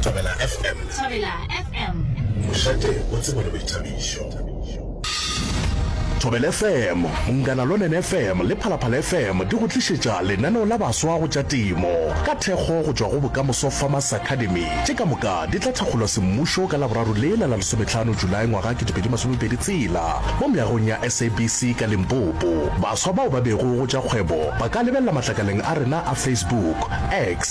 Thobela FM. Thobela FM. Mošate o tsebo le boithabišo. Thobela FM, Mungana Lonene FM le Phalaphala FM di go tlišetša lenaneo la baswa go tša temo ka thekgo go tšwa go Bokamoso Farmers Academy. Tše ka moka di tla thakgolwa semmušo ka Laboraro lela la lesometlhano Julae ngwaga 2020 tsela mo meagong ya SABC ka Limpopo. Baswa bao ba bego go tša kgwebo ba ka lebelela matlakaleng a rena a Facebook, X,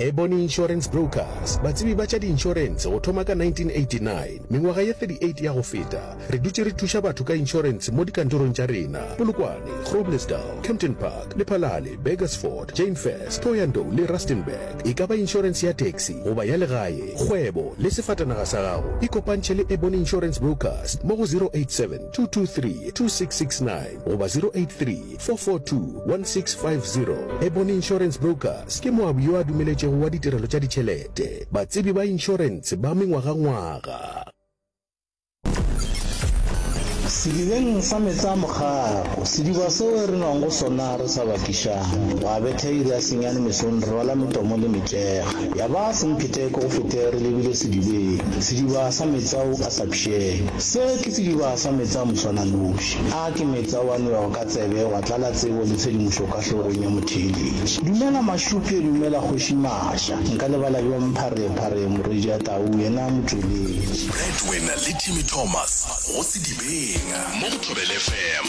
Ebony Insurance Brokers, batsebi ba tša diinšorense go thoma ka 1989. Mengwaga ye 38 ya go feta, re dutše re thuša batho ka inšorense mo dikantorong tša rena, Polokwane, Groblersdal, Kempton Park, Lephalale, Burgersfort, Jainfest, Thohoyandou le Rustenburg. E ka ba inšorense ya taxi goba ya legae, kgwebo le sefatanaga sa gago, ikopantšhe le Ebony Insurance Brokers mo go 087 223 2669 goba 083 442-1650 Ebony Insurance Brokers ke moabi yo a dumeletšego wa ditirelo tša ditšhelete, batsebi ba inšorense ba mengwagangwaga. Sedibeng sa meetse a mogago, sediba seo e re nwang go sona re sa bakišang. Gwa betha iri ya senyane mesong re rwala metomo le metšega, ya ba sempheteko go fete re lebile sedibeng, sediba sa meetse ao a sa pšhego. Se ke sediba sa meetse a moswananoši. Gona ke metsa wa nwego ka tsebe, wa tlala tsebo le tshedimošo ka hlogong ya motheeletši. Dumela Mašuke, dumela Kgoši Masha. Nka lebala bjang Pharephare, morwedi a Tau, yena a motšweletši. Breadwinner le Timmy Thomas go Sedibeng mo go Thobelefm.